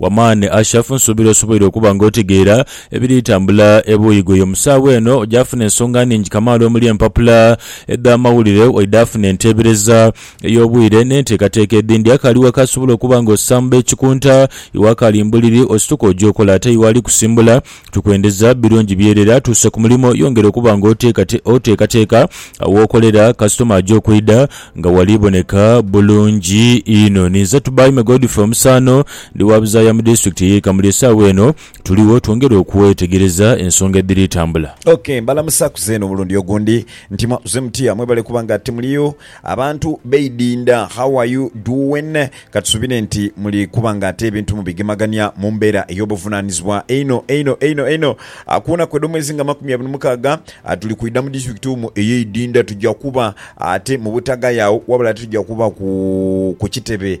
Wamani Ashaf nsuubira osoboire okuba nga otegeera ebiri tambula ebuuyi ghoyo mu saagha eno. Oja funa ensonga nhingi kamaala omuli empapula edh'amawulire waidha funa enteebereza ey'obwire n'enteekateeka edhindi. Akaali waka asobola okuba nga osamba ekikunta, iwe akaali mbuliri osituka oja okola ate iwe ali kusimbula. Tukwendeza birungi byerera tuuse ku mulimo yongera okuba nga oteekateeka w'okolera kasitoma aja okwidha nga wali boneka bulungi inho. Ni nze Tubaime Godfrey Omusaano ndi wa buzaaya mu disitulikiti ey'e Kamuli esaawa eno tuligho twongere okwetegereza ensonga edhiri tambula. Ok mbalamusaku zeena omulundi ogundi nti mwakoze mutya mwebale kuba nga timuliyo. Abantu beidinda how are you doing katusubire nti muli kuba nga ate ebintu mubigemagania mumbera eyobuvunanizibwa einho einho einho einho kuwona kwedo mwezi nga makumi abiri mukaaga tuli kwida mu district umu eyeidinda tuja kuba ate mubutagaya agho wabula ate tuja kuba ku kukitebe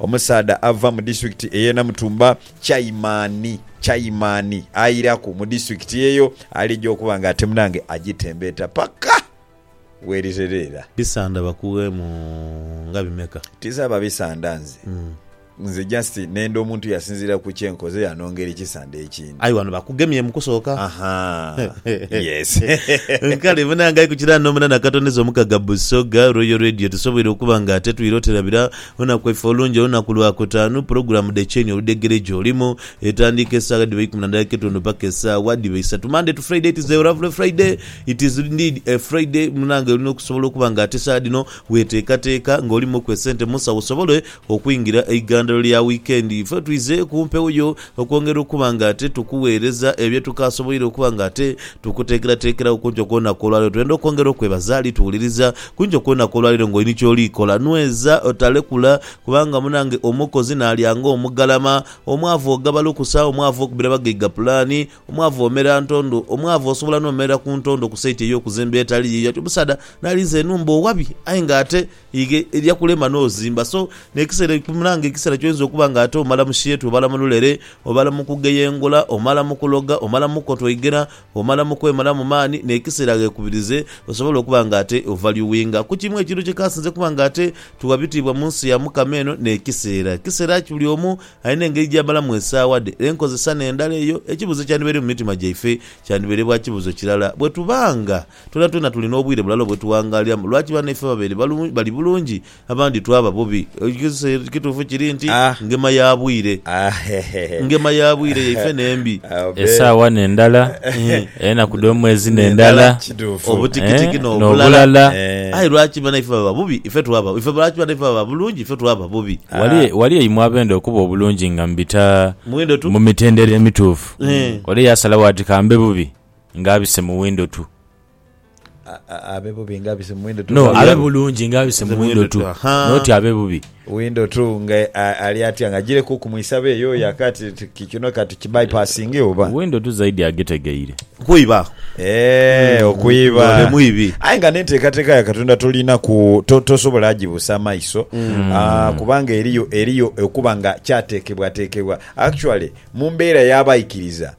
Omusaadha ava mu disitulikiti ey'e Namutumba, Chaimani Chaimani airaku mu disitulikiti eyo alija okuba nga ate munange agitembeeta paka werighereera. Bisanda bakugheemu nga bimeka? Tinsaba bisanda nze. Nze just nenda omuntu yasinziira ku kye nkoze yanongera ekisanda ekindi. Aye wano bakugemye mu kusooka. Ahaa, yes. Kale munange aye ku kiraano omunana katondeza omukaga Busoga Royal Radio tusoboire okuba nga ate twire oterabira Olunaku lwaife olungi olunaku Lwakutaanu, pulogulaamu dhe Kyeni Oludhegere gyolimu etandiika esaawa dhiba ikumi na dhaika etundu paka esaawa dhiba isatu. Monday to Friday it is a lovely Friday, it is indeed a Friday munange olina okusobola okuba nga ate saawa dhino weteekateeka nga olimuku esente munsawo osobole okwingira eigandhalo lya wiikendi. Ife twizeeku mpewo yo Okwongera okuba nga ate tukuweereza ebyo tukaasoboire okuba nga ate tukuteekerateekeragho ku nkyo kw'olunaku olwaleero, twenda okwongera okwebaza. Ali tuwuliriza ku nkyo kw'olunaku olwaleero ng'oli ni ky'oli kola. Nweza, otalekula, kubanga munange omukozi n'alya ng'omugalama. Omwavu ogaba lukusa, omwavu okubira bagaiga pulaani, omwavu omera ntondo, omwavu osobola n'omerera ku ntondo ku saiti ey'okuzimba etali yiyo. Ati omusaadha n'alinze enhumba owabi aye ng'ate Ighe erya kulema n'ozimba. So, n'ekiseera ekipimula nga ekiseera ky'oyinza okuba nga ate omala mu sheetu, obala mu lulere, obala mu kugeyengola, omala mu kuloga, omala mu kukotoigera, omala mu kwemalamu maani, n'ekiseera ghekubirize osobole okuba nga ate ovalyuwinga. Ku kimu ekintu kye kaasinze kuba nga ate tugha bitiibwa mu nsi ya Mukama eno n'ekiseera. Kiseera ki buli omu alina engeri gy'amalamu esaawa dhe? Enkozesa n'endala eyo? Ekibuuzo ekyandibaire mu mitima gyaife kyandibaire bwa kibuuzo kirala bwe tuba nga. Twonatwona tuli n'obwire bulala obwetughangaaliramu. Lwaki banaife babere bali bulungi, abandi twaba bubi? Ekigezeso ekituufu kiri nti, ngema ya bwire. Ngema ya bwire yaife n'embi. Esaawa n'endala, enaku dh'omwezi n'endala, obutikitiki n'obulala. Aye lwaki banaife baba bubi, ife twaba? Ife lwaki banaife baba bulungi, ife twaba bubi? Wali eimwe abenda okuba obulungi nga mbita mu mitendera emituufu, ole yaasalagho ati kambe bubi? ng'abise mu windo tu. Abe bubi ng'abise mu windo tu. No, abe bulungi ng'abise mu windo tu. Noti abe bubi. Windo tu nga ali atya nga ajireku okumwisa be yoyo akati kino kati ki bypassinge oba. Windo tu zaidi agitegeire. Kwiba. Eh, hmm. okwiba. Ole mwibi. Aye nga n'enteekateeka ya Katonda tolina ku to, tosobola agibuusa amaiso mm. uh, kubanga eriyo eriyo okuba nga kyateekebwateekebwa actually mu mbeera y'abaikiriza